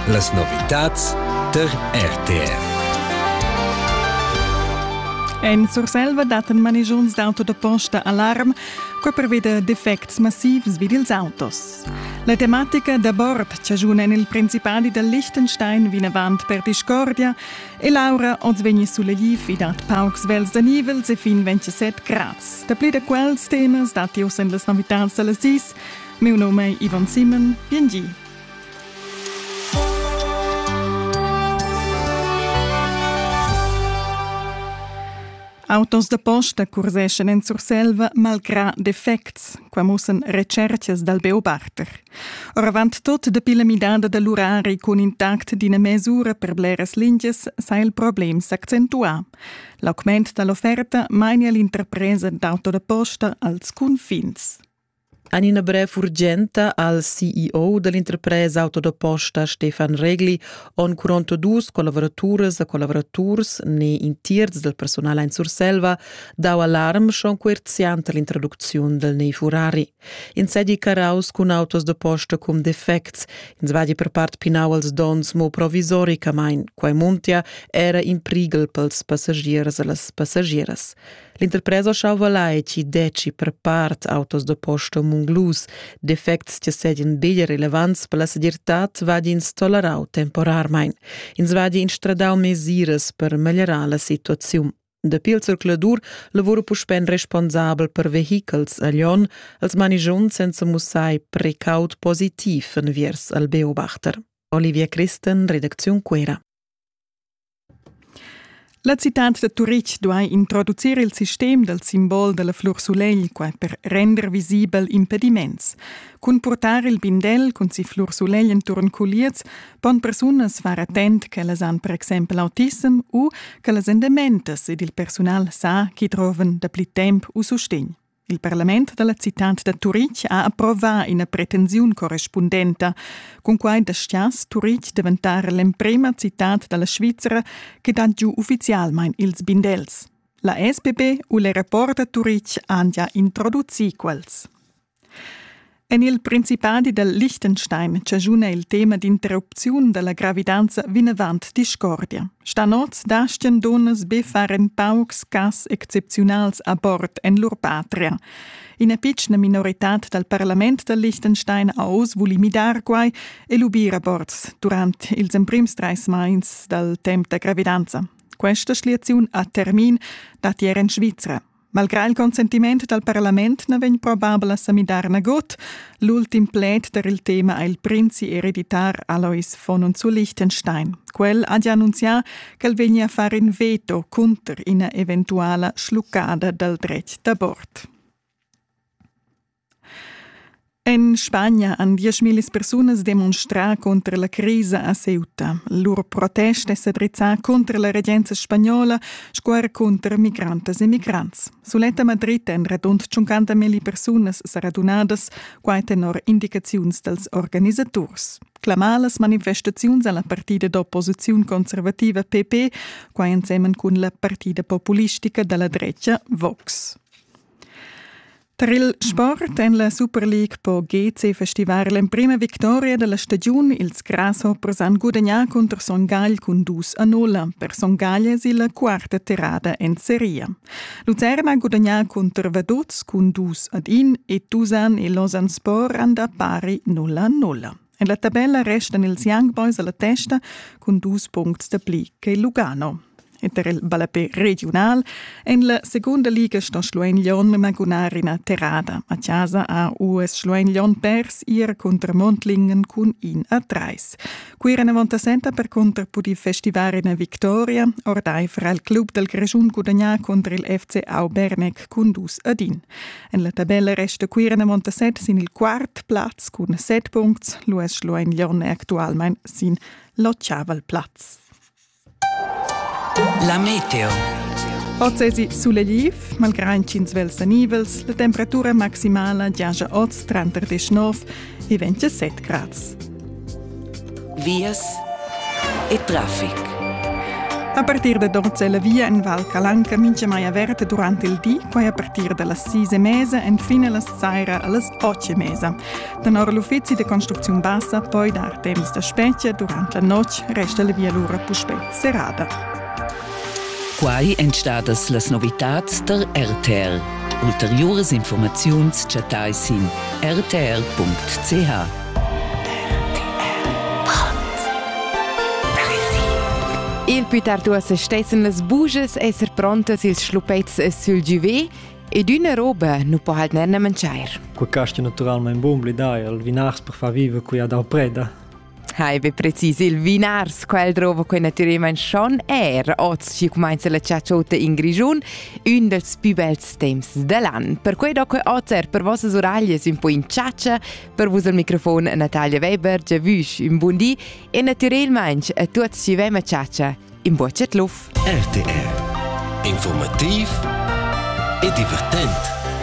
Las novitads tar RTV. En Surselva dattan manigiuns d'auto da posta alarm, quai preveda defects massivs vid ils autos. La tematica da bord chaschuna en il Principadi da Liechtenstein vinavant per discordia e l'aura oz vegni sulegliv i dat paucs vels da nivels e fin 27 grads. Dapli da quels temas datti oz en las novitads da las 10. Meu nom è Ivan Simon, biengi. Autos da posta curseschan en Surselva malgrà defects, qua mussan recercas dal Beobarter. Oravant tot dapi la midada da l'urari cun intact d'ina mesura per bleras lingias sa il problem s'accentuà. L'augment da l'offerta mania l'interpresa d'auto da posta als cunfins. En ina brev urgenta al CEO dall'interpresa auto da posta Stefan Regli on curonto dus collavoraturas e collaboraturs ne in tierz del personal in Surselva dau alarm schon coerziant all'introducziun del nei Furari. In sedi caraus cun autos da posta cum defects, in svadi per part pinau als dons mo provisoricamain, quai muntia era in prigel pels passagiers e las passagieras. L'interpresa Schauva Laici deci per part autos da posta munglus, defects che sedien bigl relevants per la segirtad vadins tolerau temporarmein. Ins vadi instradau mesiras per meglierar la situaziun. Dapi il circuladur lavora puspè responsabel per vehichels a Lyon als manigion senza mussai precaut positiv enviers al Beobachter. Olivia Christen, redacziun Quera. La citad da Turitg duai introducir il sistem dal simbol da la flur sulegl qua per render visibel impediments. Cun purtar il bindel cun si flur sulegl enturn culiez pon persunas far attent ch'ellas han per exempel autism u ch'ellas èn dementas ed il persunal sa ch'i trovan dapli temp u sustegn. Il parlament dalla citad da Turitg ha approvà ina pretensiun correspundenta. Cunquai dastgias Turitg daventar l'emprema citad dalla Svizra che dat giu uffizialmain ils bindels. La SPB u le rapport da Turitg han già introducì quels. En il Principadi dal Liechtenstein chaschuna il tema d'interrupziun da la gravidanza vinavant discordia. Stanoz dastgan dunnas be far en paucs cas excepziunals abort en lur patria. Ina pitschna minoritad dal parlament dal Liechtenstein ha oz vuli midar quai e lubir aborts durant ils emprims trais mais dal temp da gravidanza. Questa schliaziun ha termin datier en Svizra. Malgrà il consentiment dal parlament na vegn probabel a sa midar nagut. L'ultim pled per il tema è il prinzi ereditar Alois von und zu Liechtenstein. Quel ha già annunzià ch'el vegnia a far in veto cunter ina eventuala schluccada dal dretg d'abort. En Spagna han dieschmillis persunas demonstrà cunter la crisa a Ceuta. Lur protest è sa drizzà cunter la regenza spagnola sco er cunter migrantas e migrants. Suletta Madrid èn radund 50 milli persunas sa radunadas, quai tenor indicaziuns dals organisaturs. Clamà las manifestaziuns a la partida d'opposiziun conservativa PP, quai ensemen cun la partida populistica da la drecha Vox. Trill Sport en la Super League po GC festivar l'emprima victoria della stagiun. Ils Grasshoppers han gudagnà contro Son Gagl cun dus a nulla. Per Son Gagl è la quarta tirada en seria. Lucerna ha gudagnà contro Vaduz cun dus ad in e Tusan e Losanspor han da pari nulla a nulla. En la tabella restan ils Young Boys alla testa cun dus puncts da pli che Lugano. E per il ballapé regiunal en la segunda liga sto Schluein Lyon magunar ina terrada. A casa ha US Schluein Lyon pers ir contra Mondlingen cun in a treis. Quira Navontasenta per contra pudi festivar ina victoria, ordaifer al club dal Grischun gudagnà contro il FC Aubernec cun dus ad in. En la tabella resta Cuira en Montaset sin il quart plaz cun set puncts, l'US Schluein Lyon è actualmain sin l'otgavel plaz. La meteo. Oz esi sulegliv, malgrà ch'ins velsa nivels, la temperatura maximala giaja oz tranter 19 e 27 grads. vias e traffic. A partir da Dorze la via en Val Calanca mincha mai averta durante il di, quai a partir da las 6 e mesa enfin a las saira a las 8 e mesa. Tenor l'uffizi de construcziun bassa poi dar temps da spezia durante la notg resta la via lura puspè serrada. Quai èn stadas las novitads tar RTR. Ulteriuras informaziuns chattai sin rtr.ch. Il più tard uossa stessen las buges esser prontas ils schlupets sül giuvé ed üna roba nu po halt ner mangiar. Quel casti naturalmaing bun bli dai al vinars per far viver qui ad Alpreda. Hai be precis, il vinars, quel drova quei naturalment schon er, oz ci comenza la ciaciota in Grigiun, un dels più bels temps dell'an. Per quei do que oz er per vossas uraglies un po in ciacia, Per vus al microfon Natalia Weber, giavüsch, un bun di e natürel mainch a tuots chi vain a chatscha. In bocet luf! RTR. Informativ e divertent.